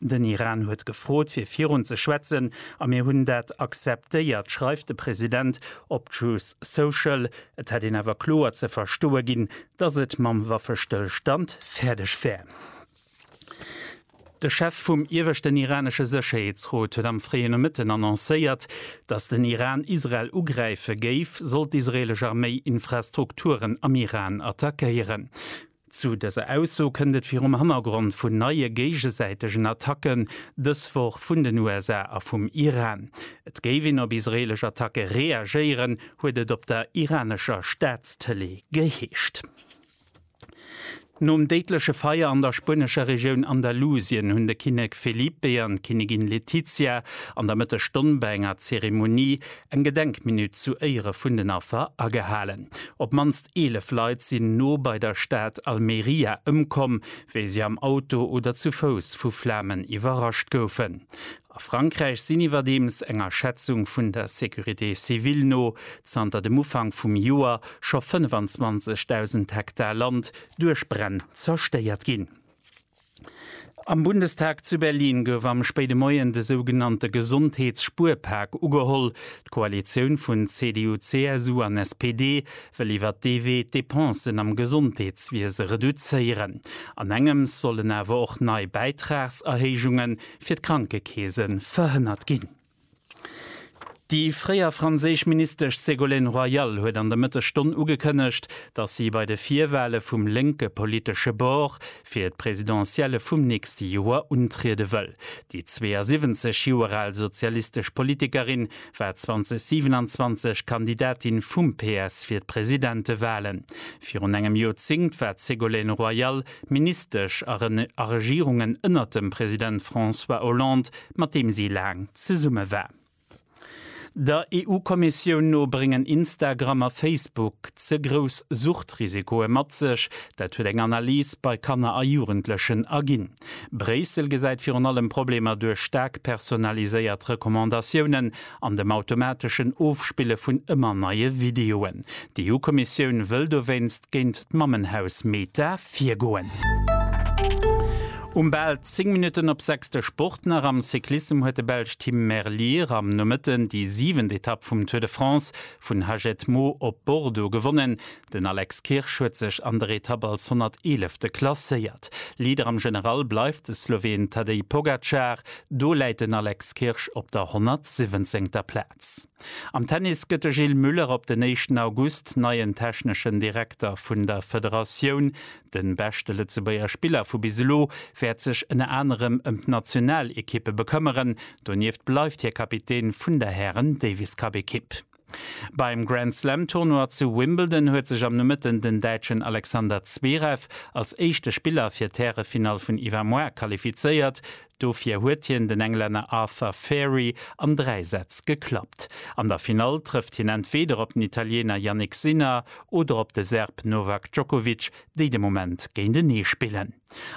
Den Iran huet gefrot fir virun ze schwätzen a mir hunn dat akzeptéiert, schreift de President op Truth Social. Et hätt een awer kloer ze verstoe ginn, datt et mam Waffestëllstand fäerdeg wär. De Chef vum ieweschten iranesche Sécherheetsrot huet am fréien Nomëtten annoncéiert, datt den Iran Israel ugräife géif, sollt d'israelesch Arméi Infrastrukturen am Iran attackéieren. Zu dëser Ausso kënnt et virum Hannergrond vun neie géigesäitegen Attacken dës Woch vun den USA a vum Iran. Et géif een op israeelesch Attacke reagéieren, huet et op der iranescher Staatstëlee geheescht. Nom déidleche Feier an der spuenescher Regioun Andalusien hunn de Kinnek Felipe an d'Kinnegin Letizia an der Mëttesstonn bei enger Zeremonie Eng Gedenkminutt zu Éiere vun den Affer agehalen. Op d'mannst 11 Leit sinn no bei der Stad Almeria ëmkomm, wéi si am Auto oder zu Fouss vu Flamen iwwerrascht goufen. A Frankräich sinn iwwerdeems, enger Schätzung vun der Sécurité civile no, zanter dem Ufank vum Joer scho 25.000 Hektar Land duerch Bränn zerstéiert ginn. Am Bundestag zu Berlin gouf am spéide Moien de sougenannte Gesondheets-Spuerpak ugeholl. D'Koalitioun vun CDU, CSU an SPD wëll iwwer dee Wee d'Depensen am Gesondheetswiese reduzéieren. Anengems sollen awer och nei Bäitragserhéijunge fir d'Krankekeese verhënnert ginn. Déi fréier franséisch Ministesch Ségolène Royal huet an der Mëttesstonn ugekënnegt, datt si bei de Virwale vum lénke politesche Bord fir d'Presidentielle vum nächste Joer untriede wëll. Déi 72 Joer al sozialistesch Politikerin war 2027 Kandidatin vum PS fir d'Presidentewalen. Virun engem Joerzéngt war d'Ségolène Royal Ministesch a Regierungen ënnert dem President François Hollande, mat deem si laang zesumme war. Der EU-Kommissioun no bréngen Instagram a Facebook ze grouss Suchtrisikoe mat sech. Dat huet eng Analys bei Kanner a Jugendlechen erginn. Bréissel gesäit virun allem Problemer duerch staark personaliséiert Recommandatiounen an dem automateschen Ofspille vun ëmmer neie Videoen. D'EU-Kommissioun wëll dowéinst géint d'Mammenhaus Meta virgoen. Um bal 10 Minutten op sechs de Sport nach. Am Cyclissem huet de Belsch Tim Merlier am Nomëtten déi siwent Etapp vum Tour de France vun Hagetmau op Bordeaux gewonnen. Den Alex Kirsch huet sech an der Etapp als 111. klasséiert. Leader am General bleift de Sloween Tadej Pogacar, do läit den Alex Kirsch op der 117. Plaz. Am Tennis gëtt de Gilles Muller op den éischten August neien techneschen Direkter vun der Federatioun. De beschte Lëtzebuerger Spiller vu bis elo wäert sech ënner anerem ëm d'Nationalekippe bekëmmeren. Donieft bleift hie Kapitän vun der Hären-Davis-Cup-Ekipp. Beim Grand Slam Tournoi zu Wimbledon huet sech am Nomëtten den Däitschen Alexander Zverev als éischte Spiller fir d'Härefinall vun Iwwermoar qualifizéiert. Dofir huet hien den Englänner Arthur Fari an 3 Sätz geklappt. An der Finall trëfft hien entweeder op den Italiener Jannik Sinner oder op de Serb Novak Djokovic, déi de Moment géintenee spillen.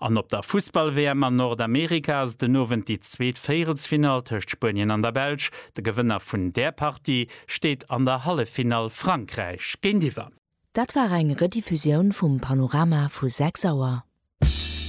An op der Fussball-WM an Nordamerika ass et den Owend déi zweet Véierelsfinall tëscht Spuenien an der Belsch. De Gewënner vun där Partie steet an der Halleffinall Frankräich géintiwwer. Dat war eng Rediffusioun vum Panorama vu 6 Auer.